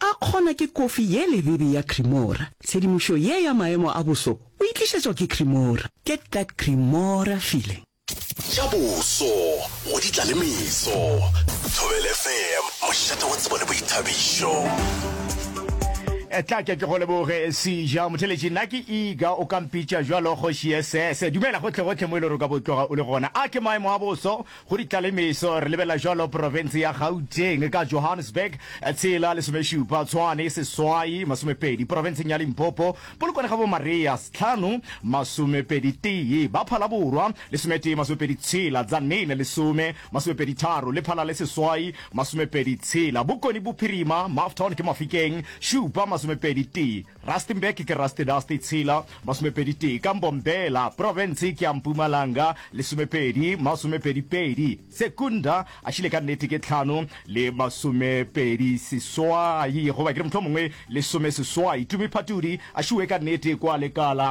A kgona ke kofi ye lebebe ya Cremora. Tshedimošo ye ya maemo a boso o e tlišetšwa ke Cremora. Get that Cremora feeling. Tša boso go di tla le meso. Thobela FM, mošate wa tsebo le boithabišo. Etla ke ke go leboge Sija Motheletši, nna ke Iga, o ka mpitša bjalo Kgoši SS. Dumela gohle gohle mo e le gore o ka bo tloga o le gona. A ke maemo a boso? Go di tla le meso re lebelela jalo porofense ya Gauteng ka Johannesburg, tshela, lesomešupa, Tshwane, seswai, masomepedi, porofenseng ya Limpopo, Polokwane ga bo Maria, s'tlhano, masomepedi tee, ba Phala Borwa, lesometee, masomepedi tshela, Tzaneen, lesome, masomepedi tharo, le Phala le seswai, masomepedi tshela, Bokoni Bophirima, Mafton ke Mafikeng, šupa, masomepedi tee. Rustenburg ke Rustedasty tshela, masomepedi tee, ka Mbombela, profense ke ya Mpumalanga, lesomepedi, masomepedi pedi, Secunda a šile ka nnete ke tlhano le masomepedi seswai, goba ke re mohlomongwe lesome seswai, Tumi Phatudi a šiwe ka nnete kwa Lekala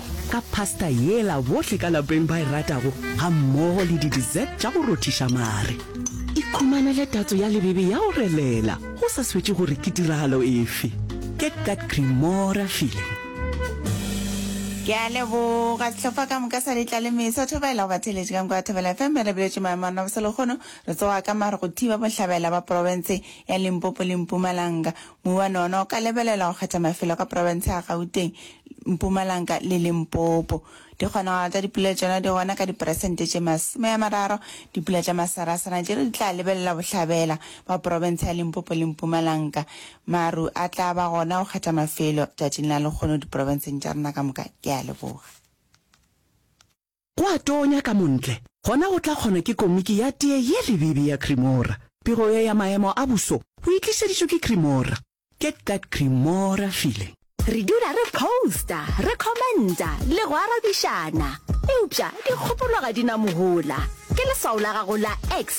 ka pasta yela bohle ka lapeng ba e ratago ga mmogo le di-dessert tša go rothiša mare. Ikhumanele tatso ya lebebe ya go relela go sa swetše gore ke tiragalo efe. Get that Cremora feeling. Ke a leboga sehlopha ka moka sa letla le mesa thobela go batheletše ka nko ya thobela fm me re biletše maemo a naboselegono re tsoga ka mare go thiba bohlabela ba porofense ya limpopo le mpumalanga Muana ona o ka lebelela go kgetha mafelo ka profense ya Gauteng, Mpumalanka le Limpopo. Dikgonagalo tsa dipula tšona di gona ka diperesente tše masome a mararo. Dipula tša masarasana tšela di tla lebelela bohlabela bja profense ya Limpopo le Mpumalanka. Maru a tla ba gona go kgetha mafelo tšatšing la lekgono diprofenseng tša rena ka moka. Ke a leboga. Go a tonya ka montle, gona go tla kgona ke komiki ya tee ye lebibi ya Cremora. Pego ye ya maemo a boso o e tlišeditšwe ke Cremora. Get that Cremora feeling. Re dula re posta, re commenta le go arabišana. Eupša dikgopolo ga di na mohola. Ke leswao la gago la X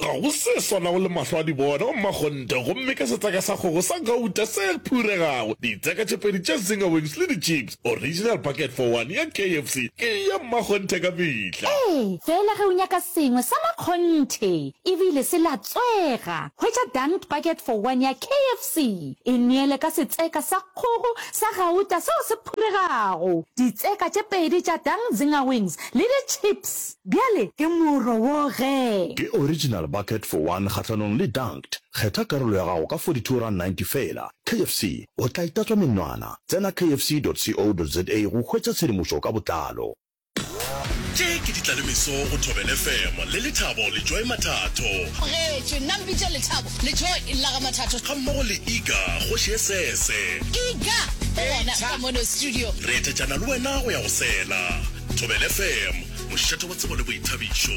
Ga go se swanago le mahlo a dibona wa mmakgonthe gomme ke setseka sa kgogo sa gauta se phuregago, ditseka tše pedi tša zinger wings le dichips, original bucket for one ya KFC ke ya mmakgonthe ka mehla. Ee, feela ge o nyaka sengwe sa makgonthe e bile se latswega, hwetša dunked bucket for one ya KFC, e neele ka setseka sa kgogo sa gauta seo se phuregago, ditseka tše pedi tša dunked zinger wings le dichips. Bjale ke moro wo ge. Ke original bucket for one kgahlanong le dunked. Kgetha karolo ya gago ka 42 rand 90 feela. KFC, o tla itatswa menwana. Tsena kfc.co.za go hwetša tshedimošo ka botlalo. Tše ke ditlalemeso go Thobel FM le Lethabo Lejoe Mathatho. Amogetše, nna Mpitša Lethabo. Letšhogo e lla ga Mathatho. Ga mmogo le Iga, kgoši ye sese. Iga, go gona ka mono studio. Re etetšana le wena go ya go sela. Thobel FM, mošate wa tsebo le boithabišo.